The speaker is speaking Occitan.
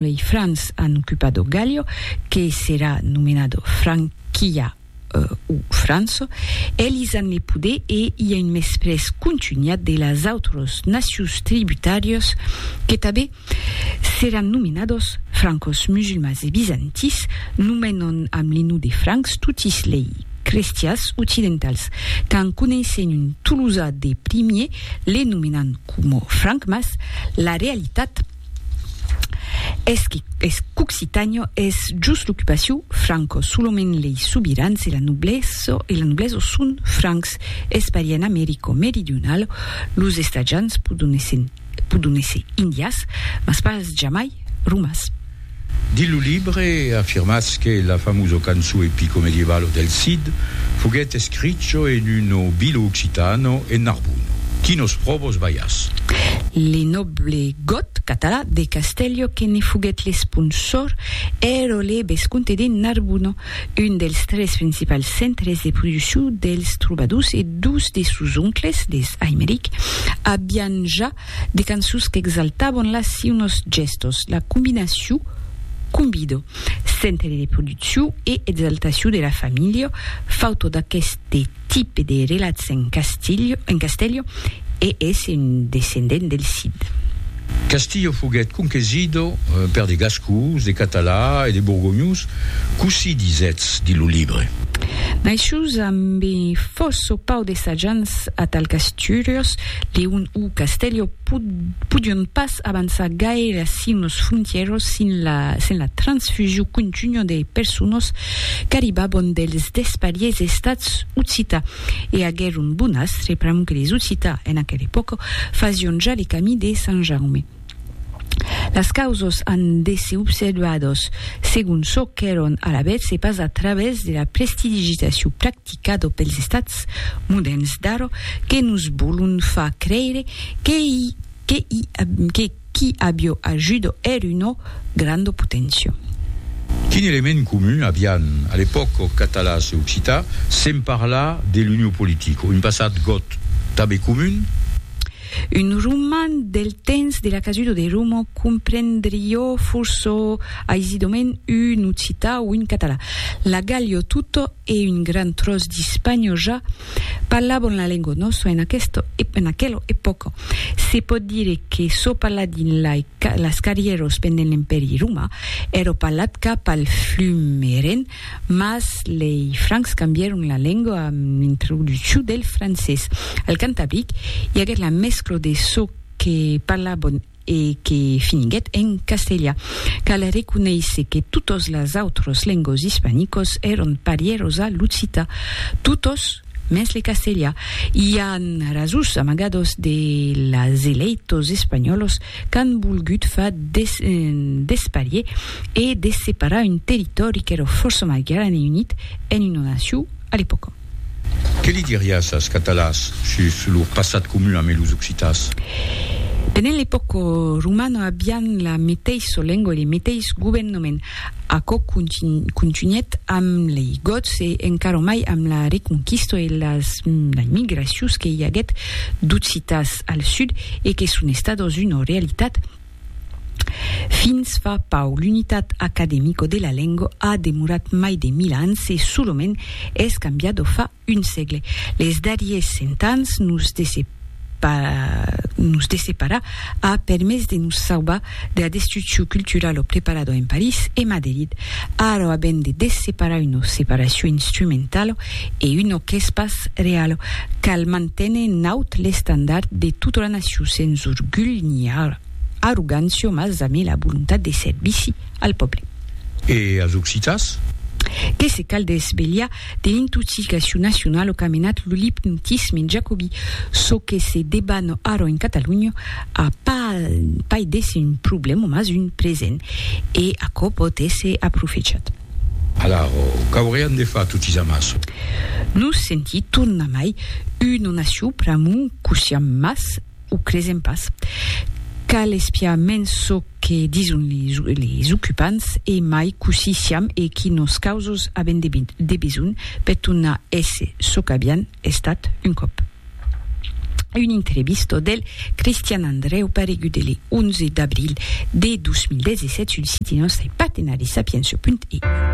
Lei Francs an occupado Gallio, que serà nomenado Franquia o Franço. Elis an le poder e i a un mesprés contunhat de las autros nacions tributàrios que tabé seràn nomenados Francos, Musulmans e Bizantins nomenon amb le non de Francs totis lei crestians occidentals qu'an coneissent un Tolosa de primier le nomenan coma Franc mas la realitat Esqui, es qu'occitanio es just l'occupaciu franco, solament lei sobirans e la nobleso e la nobleso son francs, es paria en Americo meridionalo, los estatjans podon esser podon esser indias, mas pas jamai romas. Dins lo libre, afirmatz que la famoso canço epico medievalo del Cid foguèt escricho en un nobilo occitano en Narbuno. Quinos pròvos balhas? Le noble got Català de Castello que ne foguèt l'esponsor ero le bescomte de Narbuno, un dels tres principals centres de produccion dels trobadors e dos de sos oncles, les Aimeric, avián ja De cançons qu'exaltavan la si unos gèstos, la combinacion, combido, centre de produccion e exaltacion de la familha, fautor d'aqueste tipe de relats en Castilho, en Castello, e es un descendent del Cid. Castillo foguèt conquesido per de gascons, de catalans e de borgonhons, cossí disètz dins lo libre. Naishus ambe fòrça o pauc de sajants atal qu'Astúrias Leon o Castello podion pas avançar gaire a sin los frontièros sin la sen la transfusiu contunha de personas qu'arribabon dels despariers estats occita e aguèron bon astre pr'amor que les occita en aquela epòca fasion ja le camí de Sant Jaume. Las causos an d'èsser observados segon çò qu'èron alavetz e pas a travèrs de la prestidigitacion practicada pels estats modèrns d'ara que nos vòlon far creire que qu'i avió ajuda èr una granda poténcia. Quin element comun avián, a l'epòca, eth catalàs e occitan, se'n parlar de l'Unió Politica, un passat got tanben comun? Un roman del temps de la casudo de Romo comprendrió forçó aisidament un occità o un català. La Gàllia tota e un gran tròç d'Ispània ja parlavan la lengua nòstra en aquesta e en aquela epòca. Se pòt dire que çò parlat dins las carrièras pendent l'Empèri romà èra parlat cap al flum Ren Mas lei Francs cambièron la lengua amb l'introduccion del francés. Al Cantabric, i aguèt la mescla de çò que parlabon e que finiguèt en castelha. Cal reconéisser que totas las autras lenguas ispanicas èron parièras a l'occita. Totas? Mès le castelha i a rasus amagados de las eleitos espanhòlos qu'an volgut fa desparier e desseparar un territòri qu'èra fòrça mai gran e unit en una nacion a l'epòca. Que li diriás as Catalàs sus lor passat comun amé los Occitàs? Pendent l'epòca romana avián la meteissa lengua e le meteis govenhament. Aquò contunhèt amb lei Goths e encara mai amb la Reconquista e las migracions que i aguèt d'Occitans al sud e que son estadas una realitat fins fa pauc. L'unitat academica de la lenga a demorat mai de mil ans e solament es cambiada fa un sègle. Les darriers cent ans nos desseparar a permés de nos saubar dera destruccion culturala o preparada en París e Maderid. Ara avèm de desseparar una separacion instrumentala e una qu'es pas reala. Cal manténer en aut l'estandard de tota la nacion sens orgulh ni arrogància mas amé la volontat de servici al pòble. E as occitans? Que se cal desvelhar De intoxicacion nacionala o qu'a menat lo lipntisme en jacobi, çò que se deban ara en Catalonha a pas d'èsser un problèma mas un present e aquò pòt èsser aprofechat. Alara, qu'aurián de far totis amassa? Nos senti tornar mai una nacion pr'amor qu'o siam mas O cresèm pas. Cal espiar mens çò que dison les ocupants e mai cossí siam e quí nos causos avèn de besonh per tornar èsser çò qu'avián estat un còp. Una entrevista del Christian Andreu paregut de le 11 d'abril de 2017 sul siti nòstre partenari Sapientia.eu.